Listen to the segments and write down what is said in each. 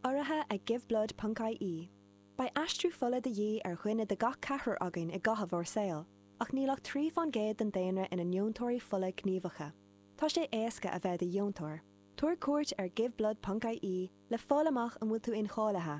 Urraithe ag Giveblood Ponc IE, beidh aistriú fola de dhíth ar dhuine de gach ceathrar againn i gcaitheamh ár saol, ach níl ach trí faoin gcéad den daonra ina ndeontóirí fola gníomhacha. Tá sé éasca a bheith i do dheontóir. Tabhair cuairt ar Giveblood Ponc IE le fáil amach an bhfuil tú incháilithe.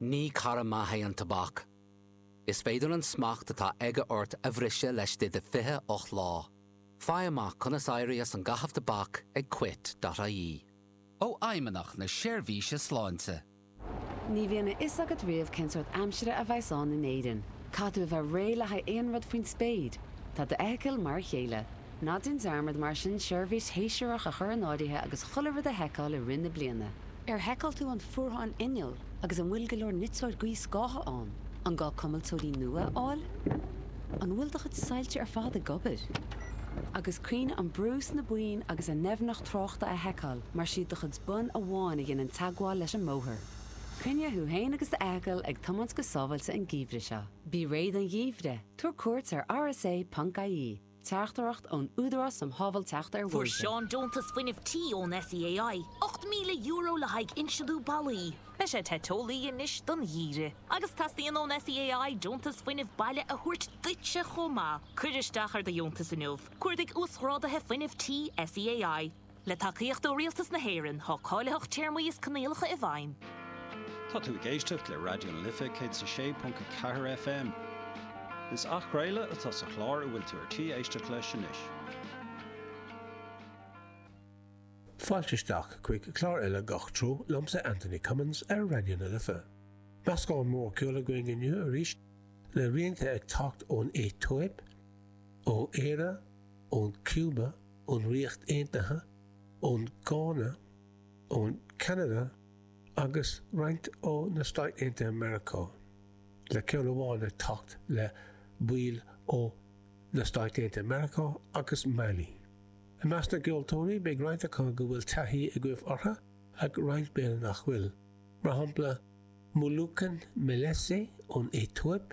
Ní cara maith é an tobac. Is féidir an smacht atá aige ort a bhriseadh laistigh de 28 lá. Faigh amach conas éirí as an gcaitheamh tobac ag quit.ie. Ó Fheidhmeannacht na Seirbhíse Sláinte. Ní bhíonn a fhios agat riamh cén sórt aimsire a bheadh ann in Éirinn. Caithfidh tú a bheith réidh le haghaidh aon rud faoin spéir. Tá d'fheithicil mar a chéile. Ná déan dearmad mar sin seirbhís shéasúrach a chur in áirithe agus chuile rud a sheiceáil i rith na bliana. Ar sheiceáil tú an fuarthán innill agus an bhfuil go leor niteora gaothscátha ann? An gá cuimilteoirí nua a fháil? An bhfuil do chuid soilse ar fad ag obair? Agus cuimhnigh an brú sna boinn agus a ndoimhneacht tráchta a sheiceáil mar siad do chuid bonn amháin a dhéanann teagmháil leis an mbóthar. Coinnigh tú féin agus d'fheithicil ag tiomáint go sábháilte an geimhreadh seo. Bí réidh don gheimhreadh, tabhair cuairt ar rsa.ie. Teachtaireacht ón Údarás um Shábháilteacht ar Bhóithre. Fuair Seán deontas fuinnimh tí ón SEAI, €8,000 le haghaidh insliú ballaí. Beidh sé te teolaí anois don gheimhreadh. Agus teastaíonn ón SEAI deontas fuinnimh baile a thabhairt duitse chomh maith. Cuir isteach ar do dheontas inniu, Cuardaigh 'Uasghráduithe Fuinnimh Tí', SEAI. Le tacaíocht ó Rialtas na hÉireann, tá cáilitheacht téarmaí is coinníollacha i bhfeidhm. Tá tú ag éisteacht le Raidió na Life 106.4 FM. Is athchraoladh atá sa chlár a bhfuil tú ar tí éisteacht leis anois. Fáilte isteach chuig clár eile Gach Treo liomsa Anthony Cummins ar Raidió na Life. Meascán mór ceoil againn inniu arís, le rianta ag teacht ón Aetóip, ó Éire, ón Chúba, ón Ríocht Aontaithe, ón Gána, ón Ceanada agus roinnt ó na Stáit Aontaithe Meiriceá, le ceann amháin ag teacht le baill ó Na Stáit Aontaithe Meiriceá agus Mailí. I measc na gceoltóirí, beidh roinnt acu go bhfuil taithí agaibh orthu ach roinnt b'fhéidir nach bhfuil, mar shampla Muluken Melesse ón Aetóip,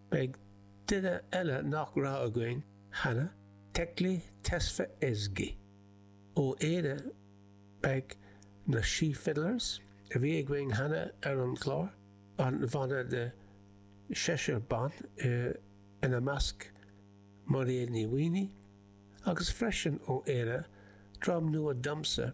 Beidh duine eile nach raibh againn cheana, Tekle Tesfazghi. Ó Éire beidh na Sí Fiddlers, a bhí againn cheana ar an gclár, an bhanna de sheisear ban, ina measc Mairéad Ní Mhaonaigh, agus freisin ó Éire, dream nua domsa,